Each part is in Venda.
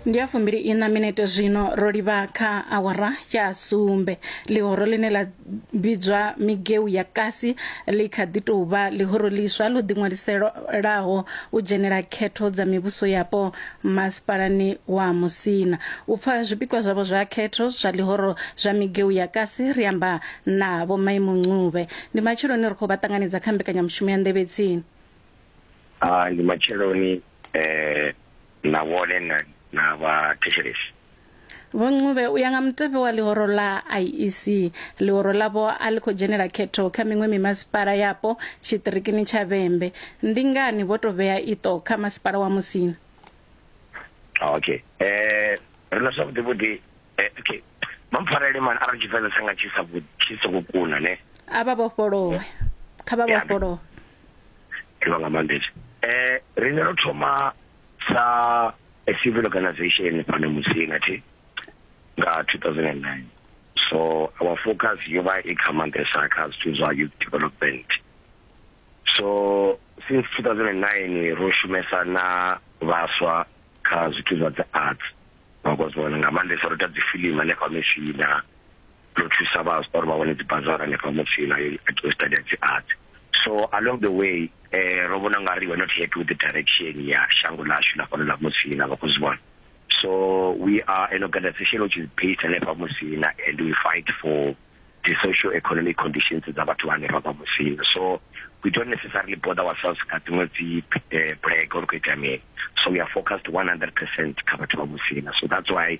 ndi ya fumbili ina minete zwino ro livha kha awara ya sumbe ḽihoro ḽine ḽa vhidzwa migeu ya kasi ḽi kha ḓi tou vha ḽihoro ḽiswa ḽo ḓiṅwaliselaho u dzhenela khetho dza mivhuso yapo masipalani wa musina u pfa zwipikwa zwavho zwa khetho zwa ḽihoro zwa migeu ya kasi ri amba na vho maimuncube ndi matsheloni ri khou vha ṱanganedza kha mbekanyamushumo ya nḓevhetsini a ndi matsheloni eh na vhone na na vha thetshelesi vho ncube u ya nga mutevhe wa ḽihoro ḽa iec ḽihoro ḽavho a ḽi khou dzhenela khetho kha miṅwe mimasipala yapo tshiṱirikini tsha vhembe ndi ngani vho tou vhea iṱo kha masipala wa musina ah, okay eh ri na zwavhuḓi vhuḓi eh, okay mampfarele mani arali tshivenḓa tsanga tshi sa tshi songo kuna ne a vha vhofholowe kha vha vhofholowe ḓivha nga maanḓesa eh ri nga thoma sa a civil organization fhano musina thi nga 2009 so our focus yo vha i kha maanḓesa kha zwithu zwa youth development so since 2009 ro shumesa na vhaswa kha zwithu zwa dzi arts vhakozwana nga maanḓesa ro ita dzifilimu hanefha mishina ndo thusa vhaswa uri vha wane dzibazara hanefha mutsila yo itiwa study dzi arts so along the way eh ro vhona nga ri we're not happy with the direction ya shango lashu la fhano la mutsila vha khou zwi vhona so we are an organization which is based hanefha mutsila and we fight for the social economic conditions dza vhathu hanefha vha mutsila so we don't necessarily bother ourselves nga dziṅwe dzi eh, black or khou itea mini so we are focused 100 percent kha vhathu vha mutsila so that's why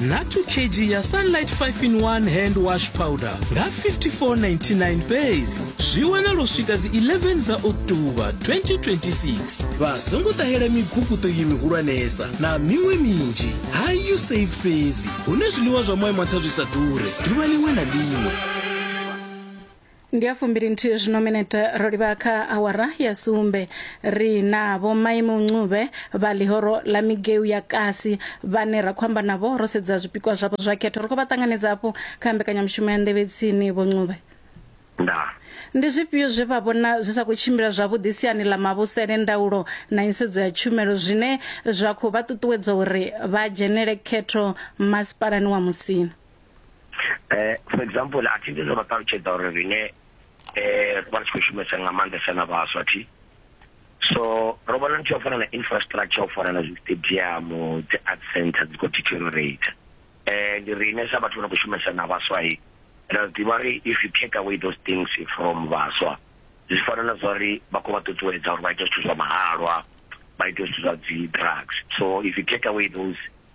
na 2 kg ya sunlight 5 in 1 hand wash powder nga 5499 fhedzi zwi wanala u swika dzi 11 dza oktoba 2026 vha songo ṱahela miguguṱo iyi mihulwanesa na miṅwe minzhi ha you save fhedzi hune zwiḽiwa zwa moya mantha zwi sa ḓure ḓuvha liṅwe na liṅwe ndi ya fumbili nthihi zwino minete ro livha kha awara ya sumbe ri na vho maimo ncube vha lihoro ḽa migeu ya kasi vhane ra khou amba navho ro sedza zwipikwa zwavho zwa khetho ri khou vha ṱanganedza hafhu kha mbekanyamushumo ya nḓevhe tsini vho ncube nda ndi zwifhio zwe vha vhona zwi sa khou tshimbila zwavhuḓi siani ḽa mavhusele ndaulo na nisedzo ya tshumelo zwine zwa khou vha ṱuṱuwedza uri vha dzhenele khetho masipalani wa musina eh for example a thi ndizo vha ṱalutshedza uri rine eh vha tshi khou shumesa nga maanḓesa na vhaswa thi so ro vhona nthu yo fana na infrastructure u fana na stadium dzi art center dzi khou deteriorate eh ndi rine sa vhathu vha khou shumesa na vhaswa hi ra ḓivha ri if you take away those things from vhaswa zwi fana na zwa ri vha khou vha ṱuṱuwedza uri vha ite zwithu zwa mahalwa vha ite zwithu zwa dzi drugs so if you take away those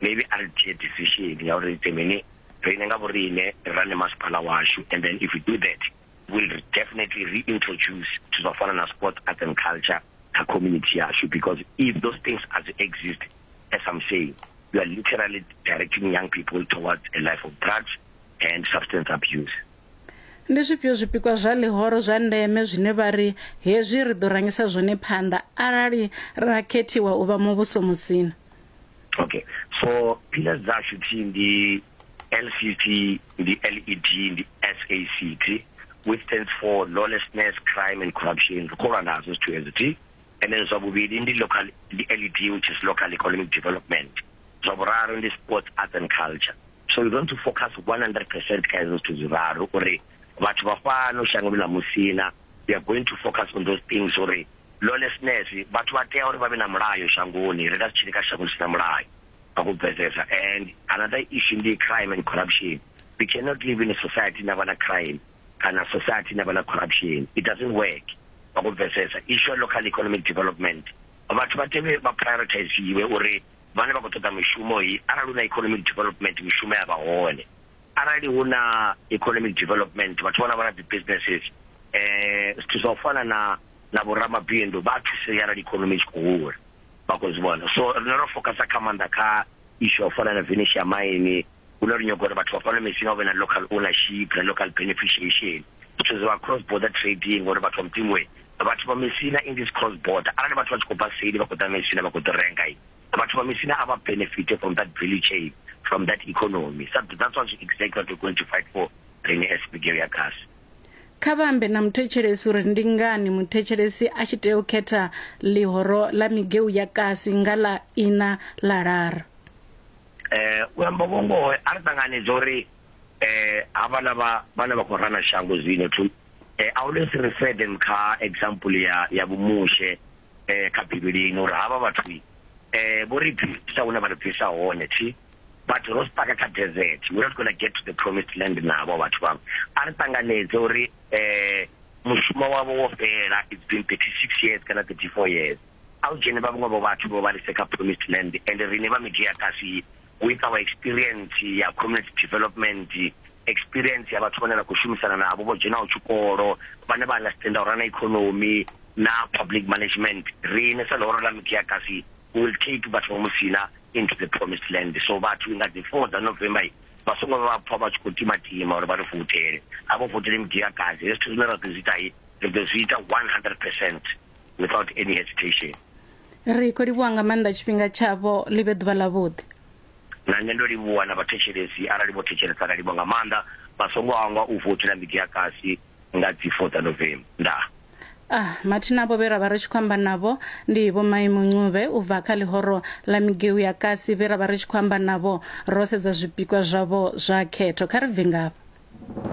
maybe a ri dzhie decision ya uri ite mini riṋe nga vhoriṋe ri rane masipala washu and then if we do that will definitely reintroduce zwithu zwa fana na sports arts and culture kha community yashu because if those things as exist as i'm saying you are literally directing young people towards a life of drugs and substance abuse ndi zwifhio zwipikwa zwa ḽihoro zwa ndeme zwine vha ri hezwi ri ḓo rangisa zwone phanḓa arali ra khethiwa u vha muvhuso musina okay so pillars zashu thi ndi lcc ndi led ndi sac thi which stands for lawlessness crime and corruption ri khou lwa nazo zwithu hezwi thi and then zwa vhuvhili ndi local ndi led which is local economic development zwa vhuraru ndi sports arts and culture so we want to focus 100 percent kha hezwo zwithu zwiraru uri vhathu vha fhano shangoni ḽa Musina we are going to focus on those things uri lawlessness vhathu vha tea uri vha vhe na mulayo shangoni ri nga si tshili kha shango ḽi si na mulayo nga ku bvedzedza and another issue ndi crime and corruption we cannot live in a society na vha na crime kana society na vha na corruption it doesn't work nga ku bvedzedza issue local economic development vhathu vha tevhe vha prioritize iwe uri vhane vha khou ṱoḓa mishumo yi arali u na economic development mishumo ya vha hone arali hu na economic development vhathu vhana vha na dzi businesses eh zwithu zwa u fana na na vhoramabindu vha thusea arali economy tshi khou hula vha khou zwi vhona so rine ro focusa kha maanḓa kha ishu ya u fana na venetia maini hune ri nyaga uri vhathu vha fana mesina hu vhe na local ownership na local beneficiation zwithu zwa cross border trading uri vhathu vha mutimwe vhathu vha mesina in this cross border arali vhathu vha tshi khou bva seli vha khou ḓa mesina vha khou ḓo renga Vhathu vha Misina a vha benefite from that value chain, from that economy. Sa that's what exactly what we're going to fight for riṋe as Bulgaria Gas. Kha vha ambe na muthetshelesi uri ndi ngani muthetshelesi a tshi tea u khetha ḽihoro ḽa migeu ya kasi nga ḽa ina ḽa lara. Eh, u amba vho ngoho, a ri ṱanganedza uri eh havhala vha vhane vha khou rana shango zwino to eh, I always refer them kha example ya ya vhumushe eh kha bivhilini uri havha vhathu eh vho ri bvisa hune vha ri bvisa hone thi vhathu ro sipaka kha desert we're not going to get to the promised land navho vhathu vhavho a ri ṱanganedze uri eh mushumo wavho wo fhela it's been 36 years kana 34 years a u dzhene vha vhaṅwe vho vhathu vho vha lise kha promised land and rine vha midia kasi with our experience ya community development experience ya vhathu vhane ra khou shumisana navho vho dzhenaho tshikolo vhane vha understanda uri na economy na public management rine sa ḽihoro ḽa mikiakasi will take vhathu vha musina into the promised land so vhathu nga dzi four dza november vha songo vha pfa vha tshi khou timatima uri vha ri voutele a vho voutele mikiakasi hezwi zwithu zwine ra ḓo zwi ita ri ḓo zwi ita 100 percent without any hesitation ri khou livhuwa nga maanḓa tshifhinga tshavho ḽi vhe ḓuvha ḽavhuḓi na nṋe ndo livhuwa na vhathetshelesi arali vho thetshelesa ra livhuwa nga maanḓa vha songo hangwa u votela midi ya kasi nga dzi 4 dza novemba ndaa Ah, mathina avho vhe ra vha ri tshi khou amba navho ndi vho maimo ncube u bva kha ḽihoro ḽa migeu ya kasi vhe ra vha ri tshi khou amba navho ro sedza zwipikwa zwavho zwa khetho kha ri bve ngafha